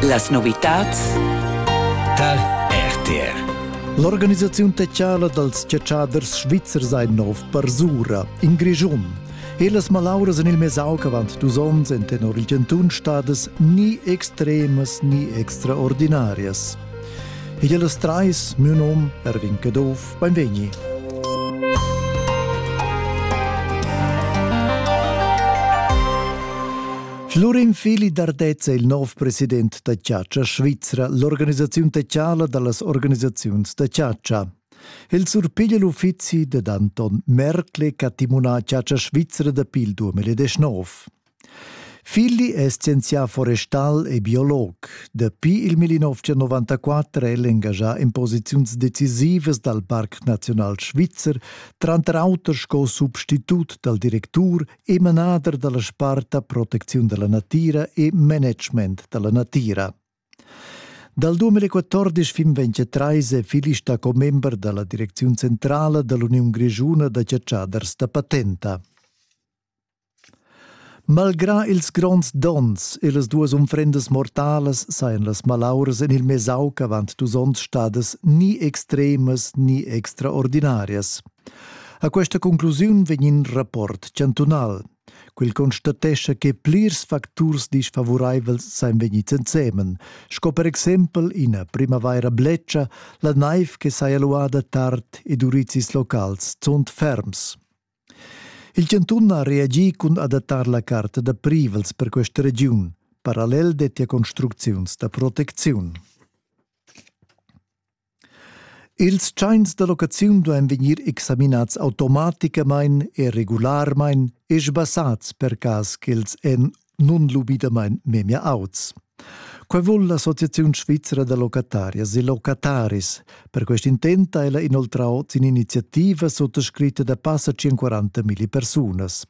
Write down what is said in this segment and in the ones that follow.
Las novitads tar RTR. L'organisaziun techala dals chatschaders svizzers ein nov parsura in Grischun. Ellas malauras en il mesauc avant dus onns en tenor il Gentun stadas ni extremas ni extraordinarias. E ellas trais, mio nom, Erwin Caduff, benvegni. Florin Fili d'Ardez è il nov president da chatscha svizra, l'organisaziun techiala da las organisaziuns da chatscha. El surpiglia l'uffizi dad Anton Merkle ch'ha timunà chatscha svizra dapi il 2019. Filli è scienzià forestal e biolog. Dapi il 1994 è el engagià en posiziuns decisivas dal Parc Naziunal Svizzer, tranter auter sco substitut dal directur e manader dalla sparta protecziun dalla natira e management dalla natira. Dal 2014 fin 2023 è Filista commember dalla Direcziun centrala dall'Uniun Grigiuna da cacciaders da patenta. Malgrà ils gronds donns e las duas unfrendas mortalas sajan las malauras en il Mesauc avant dus onns stadas ni extremas ni extraordinarias. A questa conclusiun vegn in rapport chantunal. Quel constatescha che plirs facturs disfavuraivels san vegnir ensemen, sco per exempel ina primavaira bletscha, la naiv che saja luada tard ed urizis locals zunt ferms. Il chantun ha reagì cun adattar la carta da privels per questa regiun, parallel dettia construcziuns da protecziun. Ils tschains da locaziun duain vegnir examinads automaticamain e regularmain e sbassads per cas ch'els èn nunlubidamain memia auts. Quai vul l'Associaziun svizra da locatarias e locataris. Per quest intent ha ella inoltrau sin iniziativa suttascritta da passa 140 milli persunas.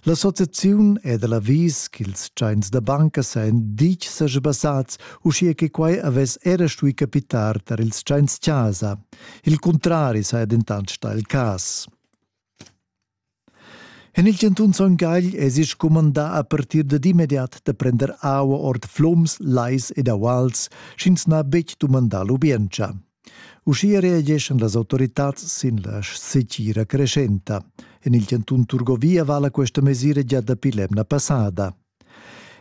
L'associaziun è da l'avis ch'ils tschains da banca sajan ditg saja basats, uschia che quai avess era stuì capitar tar ils tschains-chasa. Il cuntrari saja dentant stà il cas. En il cantun Son Gagl èsi scumandà a partir dad immediat da prender aua ord flums, lais ed auals, sch'ins n'ha betg dumandà lubientscha. Uschia reageschan las autoritads sin la setgira creschenta. En il chantun Turgovia vala questa mesira gia dapi l'emna passada.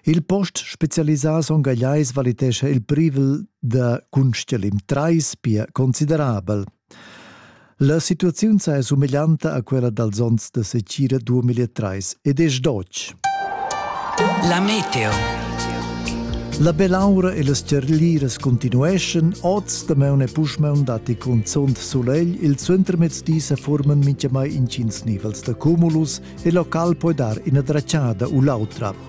Il post specialisà Son Gagliais valitescha il privel da Kunststellim 3 pia considerabel. La situaziun è sumeglianta a quella dals onns da secira 2003 ed è sdotg. La meteo. La belaura e las cerliras continueschan, oz da maun e puschmaun datti cunzunt sulegl, il suentermezdi sa forman mintgamai intgins nivels da cumulus e local poi dar ina dracciada u l'autra.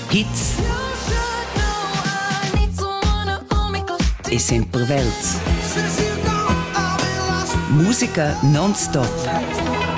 Hits e sempre Welts. Musica non stop.